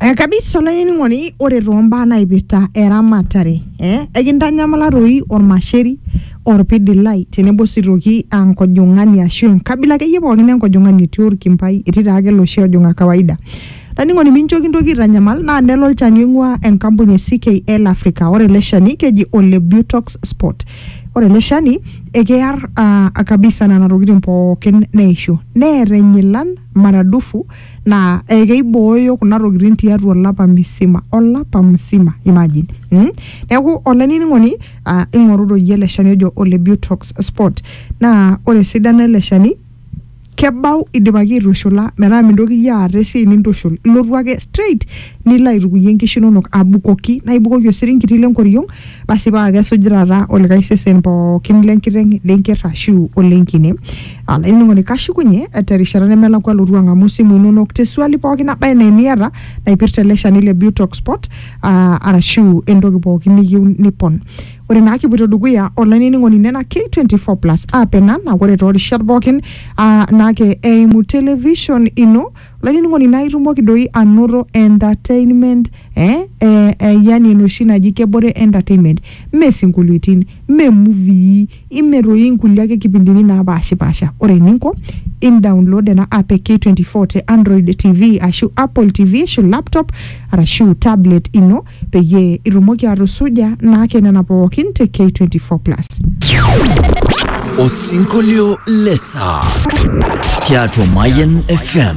Eh, kabisa olainining'oni ore toombaa naipirta eramatare eh, ekintanyamala toi ormasheri orpidilai tenebo sii toki ah, nkojong'ani ashu enkabila akeyie pookin enkojong'ani etii orkimbai etii taake loshi ojong'a kawaida laining'oni mincho kintoki aitanyamal naa nelo olchani oing'ua enkampuni e CKL Africa ore ele shani keji ole Butox spot ore ele shani ekear ah, kabisa nena tokitin pookin neishu neer enyilan maradufu naa eh, keibooyo kuna tokitin tiatua olapa misima olapa msima imagine mm? neeku olainining'oni ah, ing'oru doi ele shani ojo ole butox sport naa ore esidano ele shani kebau idipaki aitushula metaa mintoki iyie aata esiai nintushul ilotu ake straight nilo aitukunyie inkishu inonok abukoki naa ibukoki osiringiti lenkoriong basi paa kesuj taata olikae sesen pookin lenkiteng lenkerr ashu olenkine Olainining'oni kashukunye terishata nemelakua alotu ang'amu simu inonok tesuali pooki naba enaa eniata naipirta ele shani le Butox Sport ah, arashu entoki pooki niyieu nipon. Ore naa kipuoito dukuya olainining'oni nena K24 plus app ena naa ore toorishat pookin ah, naa ke eimu television ino olainining'oni naa itumoki doi anoto entertainment eh, eh, eh, yani enoshi naji kebore entertainment mee sinkolioitin mee muvii Imir toi inkulie ake kipindini naapaashipaasha. Ore eninko, indaonlod ena app e K24 te Android TV ashu Apple TV ashu laptop arashu tablet ino peyie itumoki atusuja naake nena pookin te K24 plus. Osinkolio le saa tiatua Mayian FM.